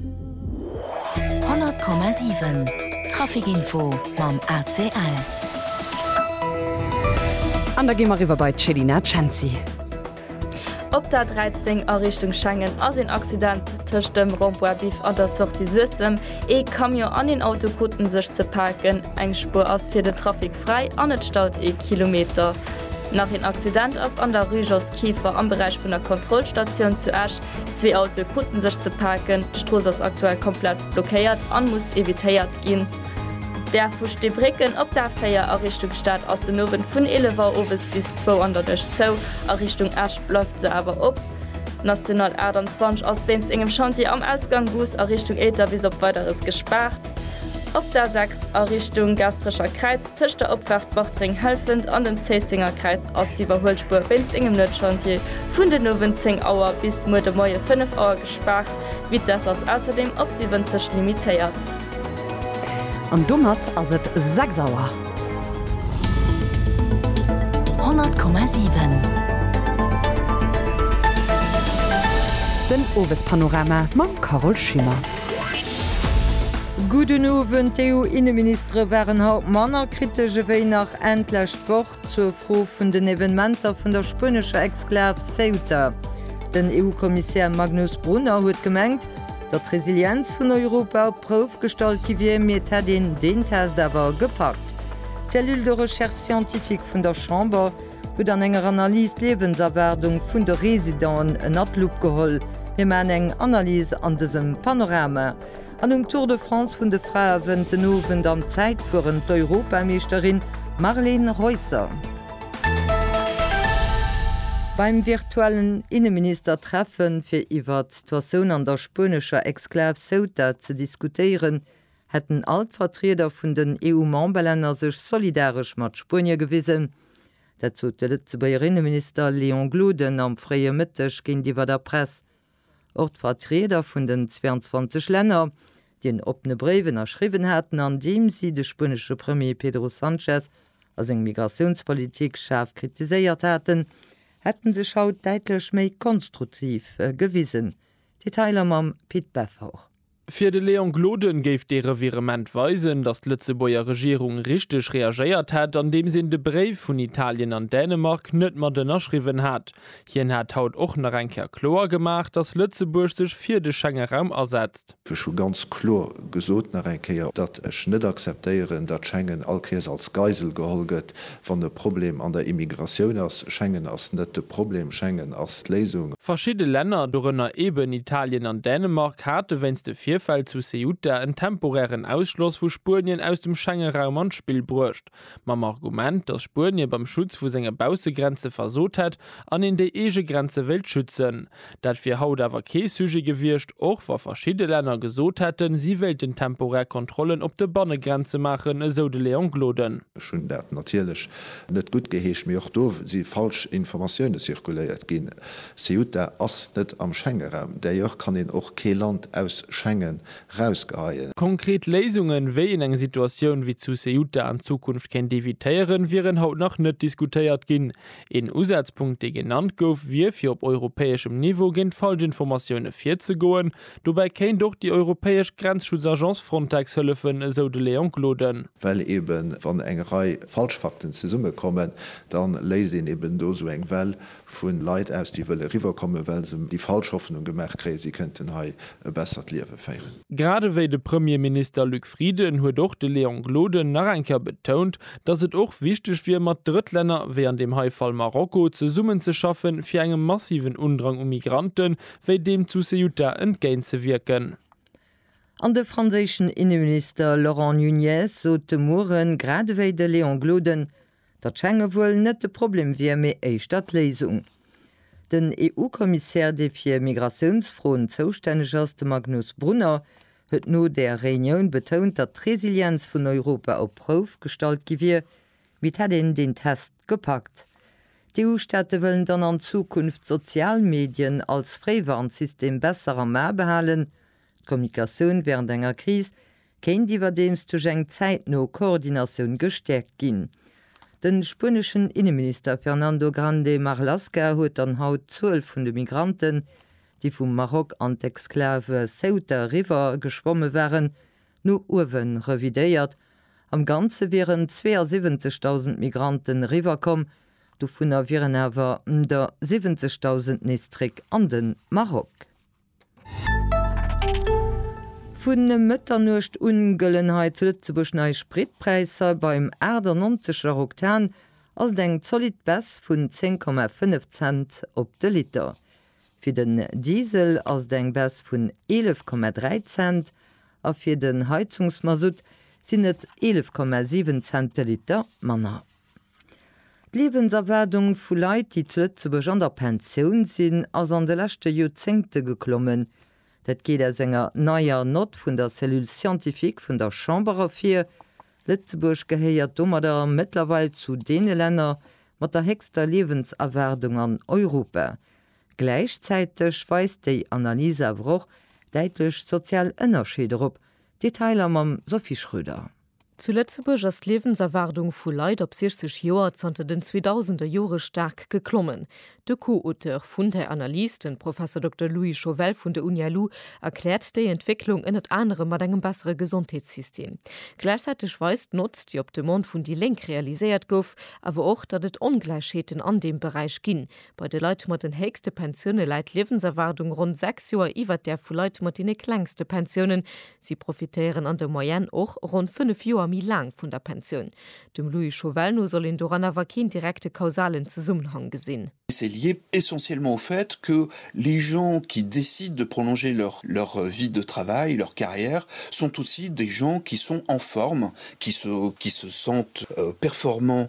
100,7 Trafic Info mam ACL. An da gi mer eriwwer bei d'Chelina Cenci. Op der 13 a Richtung Schengen ass een Accident tëscht dem Rond-point Biff an der Sortie Suessem. Ee Camion an een Auto kruten sech ze paken. Eng Spuer ass fir den Trafic fräi an et staut ee Kilometer. Nach een Accident ass an der Rue Jos Kieffer am Beräich vun der Kontrollstatioun zu Esch. Zwee Autoe krute sech ze paken, d'Strooss ass aktuell komplett blockéiert a muss evitéiert ginn. D'Gare vu Steebrécken op d'A4 a Richtung Stad ass den Owend vun 11 Auer owes bis zwou an der Nuecht zou, a Richtung Esch bleift se awer op. D'National 28 ass wéinst engem Chantier am Ausgang Goos a Richtung Éiter bis op Weideres gespaart. Op d'A6 a Richtung Gaasperecher Kräiz Tëscht der Opfaart Bartreng-Helfent an dem Zéisséngerkräiz ass d'Iwwerhuelspuer wéinst engem Nuetschantier vun den Owend 10 Auer bis muer de Moie 5 Auer gespaart. D'Vitess ass ausserdeem op 70 limitéiert. An domat ass et 6 Auer. 100,7. Den Owespanorama mam Carole Schimmer. Gudden Owend, D'EU-Inneministesch. D'Arbitre waren haut manner kritesch ewéi nach Enn d'lescht Woch zur Fro vun den Evenementer vun der spuenescher Exklav Ceuta. Den EU-Kommissär Magnus Brunner huet gemengt, datt d'Resilienz vun Europa op d'Prouf gestallt gi wier, mee et hätt een deen Test awer gepackt. D'Cellule de Recherche Scientifique vun der Chamber huet an enger Analys d'Liewenserwaardung vun de Residenten ënner d'Lupp geholl. Mir maachen eng Analys an dësem Panorama. An um Tour de France vun de Frae wënnt den Owend am Zäitfueren d'Europameeschterin Marleen Reusser. Beim virtuellen Inneministertreffen, fir iwwert d'Situatioun an der spuenescher Exklav Ceuta ze diskutéieren, hätten all d'Vertrieder vun den EU-Memberlänner sech solidaresch mat Spuenie gewisen. Dat sot de Lëtzebuerger Inneminister Léon Gloden am fréie Mëtteg géintiwwer der Press. Och d'Vertrieder vun den 22 Länner, déi en oppene Bréif ënnerschriwwen haten, an deem si de spuenesche Premier Pedro Sanchez a seng Migratiounspolitik schaarf kritiséiert haten, hätte sech haut däitlech méi konstruktiv gewisen. Detailer mam Pit Beffort. Fir de Léon Gloden géif dee Revirement weisen, datt d'Lëtzebuerger Regierung richteg reagéiert hätt, andeems een de Bréif vun Italien an Dänemark net mat ënnerschriwwen hat. Hien hat haut och nach eng Kéier kloer gemaach, datt Lëtzebuerg sech fir de Schengeraum asetzt. Ech hu ganz kloer gesot, nach eng Kéier, datt ech net akzeptéieren, datt Schengen all Kéiers als Geisel geholl gëtt, Wann e Problem an der Immigratioun ass, Schengen ass net de Problem, Schengen ass d'Léisung. Verschidde Länner, dorënner eeben Italien an Dänemark, hate wéinst de Virfäll zu Ceuta en temporären Ausschloss vu Spuenien aus dem Schengeraum an d'Spill bruecht, mam Argument, datt Spuenie beim Schutz vu senge Baussegrenze versot hätt an een déi eege Grenze wéilt schützen. Dat wier haut awer kee Sujet gewiescht, och wa verschidde Länner gesot hätten, si wéilten temporär Kontrollen op de Bannegrenze maachen, esou de Léon Gloden. Ech hunn dat natierlech net guttgeheescht, mee och do si falsch Informatioune zirkuléiert ginn. Ceuta ass net am Schengenraum, d'ailleurs kann een och kee Land aus Schengen rausgeheien. Konkret Léisungen, wéi een eng Situatioun wéi zu Ceuta an Zukunft kéint evitéieren, wieren haut nach net diskutéiert ginn. Een Usazpunkt dee genannt gouf, wier fir op europäeschem Niveau géint Falschinformatioune virzegoen. Dobäi kéint och déi europäesch Grenzschutzagence Frontex hëllefen, esou de Léon Gloden. Well eben wann eng Rei Falschfakten zesummekommen, da léist een eben do esou eng Well vu Leit aus, déi wëlle riwwerkommen, well se déi falsch Hoffnung gemaach kréien, si kënnten hei e bessert Liewe féieren. Grad ewéi de Premierminister Luc Frieden huet och de Léon Gloden nach eng Kéier betount, datt et och wichteg wier mat Drëttlänner, wéi an deem hei Fall Marokko, zesummen ze schaffen, fir engem massiven Undrang u Migrante wéi deem zu Ceuta entgéint ze wierken. An de franséischen Inneminister Laurent Nunez sot de Mueren, grad ewéi de Léon Gloden, Datt Schengen wuel net de Problem wier, mee éischter d'Léisung. Den EU-Kommissär, dee fir Migratiounsfroen zoustänneg ass, de Magnus Brunner, huet no där Reunioun betount, datt d'Resilienz vun Europa op d'Prouf gestallt gi wier, mee et hätt een deen Test gepackt. D'EU-Staate wëllen dann an Zukunft d'sozial Medien als Fréiwarnsystem besser am A behalen. D'Kommunikatioun wärend enger Kris kéint iwwerdeems duerch eng zäitno Koordinatioun gestäerkt ginn. De spueneschen Inneminister Fernando Grande Marlaska huet dann haut d'Zuel vun de Migranten, déi vum Maroc an d'Exclave Ceuta eriwwer geschwomme waren, no uewe revidéiert. Am Ganze wieren 72.000 Migranten eriwwerkomm, dovunner wieren awer der 70.000 nees zréck an de Maroc. Vun Mëtternuecht un gëllen hei zu Lëtzebuerg nei Spritpräisser. Beim 98 Bar Oktan ass et eng zolidd Baisse vun 10,5 Cent op de Liter. Fir den Diesel ass et eng Baisse vun 11,3 Cent a fir den Heizungsmasutt sinn et 11,7 Cent de Liter manner. D'Liewenserwaardung vu Leit, déi zu Lëtzebuerg an der Pensioun sinn, ass an de leschte Joerzéngte geklommen. Dat geet aus enger neier Nott vun der Cellule scientifique vun der Chamber ervir. Lëtzebuerg gehéiert domadder mëttlerweil zu deene Länner mat der héchster Liewenserwaardung an Europa. Gläichzäiteg weist déi Analys awer och däitlech sozial Ënnerscheeder op. Detailer mam Sophie Schröder. Zu Lëtzebuerg ass d'Liewenserwaardung vu Leit op 60 Joer zanter den 2000er Jore staark geklommen. De Co-Auteur vun der Analys, de Professor Dokter Louis Chauvel vun der Uni LU, erkläert déi Entwécklung ënnert anerem mat engem bessere Gesondheetssystem. Gläichzäiteg weist d'Notz, déi op Demande vun déi Lénk realiséiert gouf, awer och, datt et Ongläichheeten an deem Beräich ginn, Bei de Leit mat den héchste Pensioune läit d'Liewenserwaardung ronn 6 Joer iwwert där vu Leit mat deene klengste Pensiounen. Si profitéieren an der Moyenne och ronn 5 Joer méi laang vun der Pensioun. Dem Louis Chauvel no soll een doran awer keen direkte kausalen Zesummenhang gesinn. C'est lié essentiellement au fait que les gens qui décident de prolonger leur leur vie de travail, leur carrière, sont aussi des gens qui sont en forme, qui se qui se sentent performants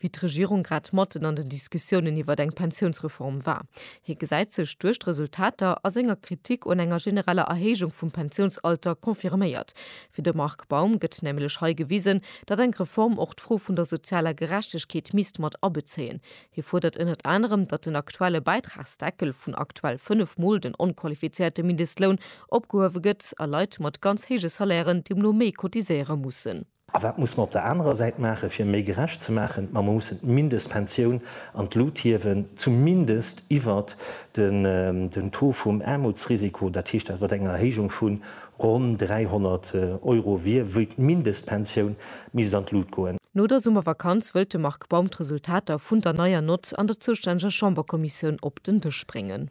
wéi d'Regierung grad matten an den Diskussiounen iwwert eng Pensiounsreform war. Hie gesäit sech, duerch d'Resultater a senger Kritik un enger genereller Erhéijung vum Pensiounsalter confirméiert. Fir de Marc Baum gëtt nämlech hei gewisen, datt eng Reform och d'Fro vun der sozialer Gerechtegkeet misst mat abezéien. Hie fuerdert ënnert anerem, datt den aktuelle Bäitragsdeckel vun aktuell 5 Mol den onqualifizéierte Mindestloun opgehuewe gëtt a Leit mat ganz héije Salairen deemno méi cotiséiere mussen. A wat muss mer op der anerer Säit maachen, fir méi gerecht ze maachen? Ma mer mussen d'Mindestpensioun an d'Lut hiewen, zumindest iwwert den Taux vum Aarmutsrisiko, dat heescht dat wat eng Erhéijung vu ronn 300 Euro wier, wéi d'Mindestpensioun misst an d'Lut goen. No der Summervakanz wëllt de Marc Baum d'Resultater vun der neier Nott an der zoustänneger Chamberkommissioun op den Dësch bréngen.